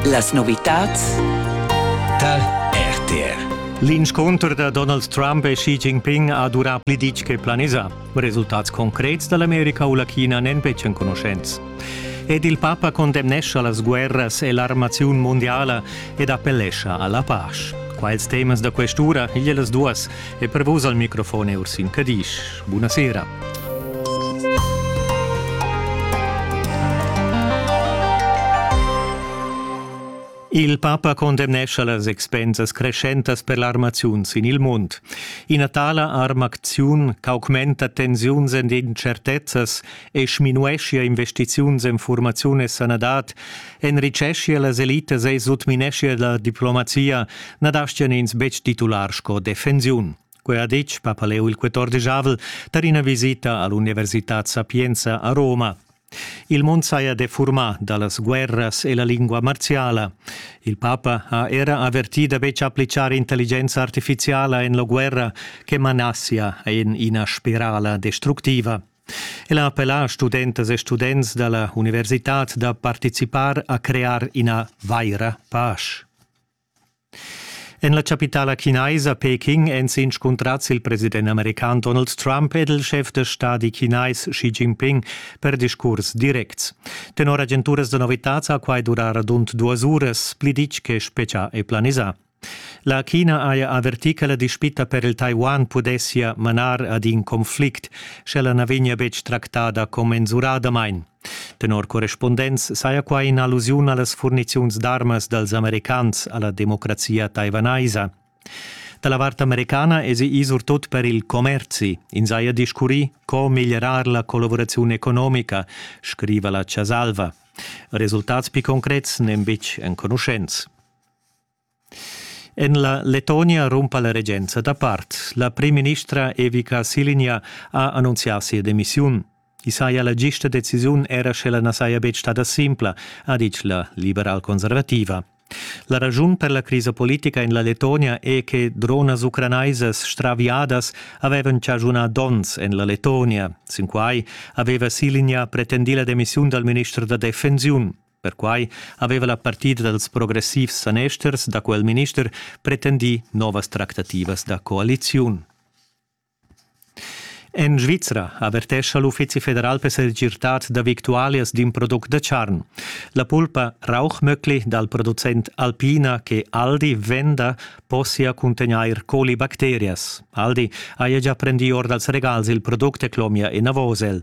Las novitads tar RTR. L'inscunter da Donald Trump e Xi Jinping ha durà pli ditg che planisà. Resultats concrets da l'America u la China n'èn betg enconuschents. Ed il papa condemnescha las guerras e l'armaziun mondiala ed appellescha a la pace. Quels temas da quest'ura, igl e las duas, e per vus al microfon è Ursin Cadisch. Buona sera. Il papa condemnescha las expensas creschentas per l'armaziun sin il mund. Ina tala armacziun ch'augmenta tensiuns ed incertezzas e sminueschia investiziuns en furmaziun e sanadad enriceschia las elitas e sutmineschia la diplomazia, na dastian ins betg titular sco defensiun. Quei ha detg Papaleu il XIV tar ina visita all'Università Sapienza a Roma. Il mund saja defurmà da las guerras e la lingua marziala. Il papa ha era avertì da betg appliccar intelligenza artifiziala en la guerra che manassia en ina spirala destructiva. El ha appellà studentas e students da la universitad da participar a crear ina vaira pasch. En la chapitala chinaisa Peking èn s'inscuntrads il president american Donald Trump ed il schef da stadi chinais Xi Jinping per discurs directs. Tenor agenturas da novitads ha quai durà radund duas uras, pli ditg che spetgà e planisà. La China haja avertì che la dispita per il Taiwan pudessia manar ad in conflict, sch'ella na vegnia betg tractada commensuradamain. Tenor correspondents saja quai in'allusiun a las furniziuns d'armas dals americans a la democrazia taiwanaisa. Da la vart americana èsi ì surtut per il commerzi. Ins haja discurrì co miglierar la collavuraziun economica, scriva la Chasalva. Resultats pli concrets n'èn betg enconuschents. En la Letonia rumpa la regenza dapart. La primministra Evica Silinja ha annunzià sia demissiun. I saja la gista decisiun era sch'ella na saja betg stada simpla, ha ditg la liberal-conservativa. La ragiun per la crisa politica en la Letonia è che dronas ucranaisas straviadas avevan chaschunà donns en la Letonia. Sin quai aveva Silinja pretendì la demissiun dal minister da defensiun. Perquai aveva la partida dals progressivs sanesters da quel minister pretendì novas tractativas da coaliziun. En Svizra avertescha l'Uffizi federal per segirtad da victualias d'in product da charn. La pulpa Rauchmöckli dal producent Alpina che Aldi venda possia cuntegnair colibacterias. Aldi haja già prendì or dals regals il product e clomia enavos el.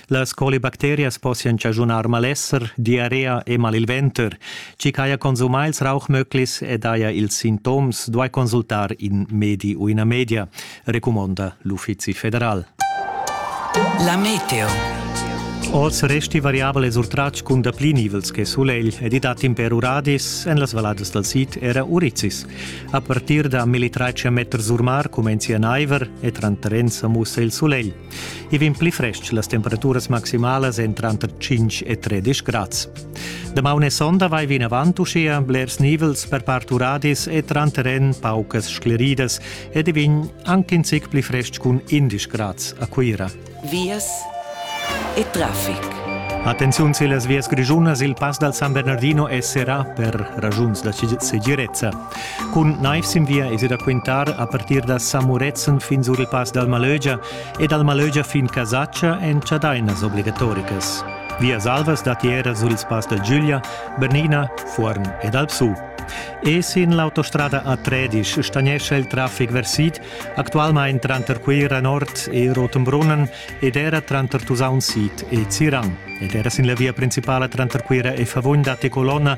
Las colibacterias possian chaschunar malesser, diarrea e mal il venter. Chi ch'haja consumà ils rauchmöglis ed haja ils sintoms duai consultar in medi u ina media, recumonda l'Uffizi federal. La meteo. Oz resti variabel ed urtratg cun dapli nivels che sulegl ed i dat imper uradis en las valladas dal sid era urizis. A partir da 1300 meters sur mar cumenzia naiver e tranter ins sa mussa il sulegl. I vegn pli frestg las temperaturas maximalas en tranter 5 e 13 grads. Damaun e sonda vai vinavant uschia blers nivels per part uradis e tranter en paucas scleridas ed i vegn anche in zic pli frestg cun 11 grads a Cuira. Vias e traffic. Attenziun se las vias grigiunas il pass dal San Bernardino è serrà per ragiuns da segirezza. Cun naiv sin via es da quintar a partir da Samuretzen fin sur il Pass dal Malögia e dal Malögia fin Casatscha en chadainas obligatoricas. Vias alvas datiera sur il Pass da Giulia, Bernina, Fuorn ed Alpsu. E sin l'autostrada a Tredisch stagnescha il traffic versit actualmain tranter Cuira Nord e Rotenbrunnen ed era tranter Tusaun Sid e Zirang. Ed era sin la via principala tranter Cuira e Favugn datti colonna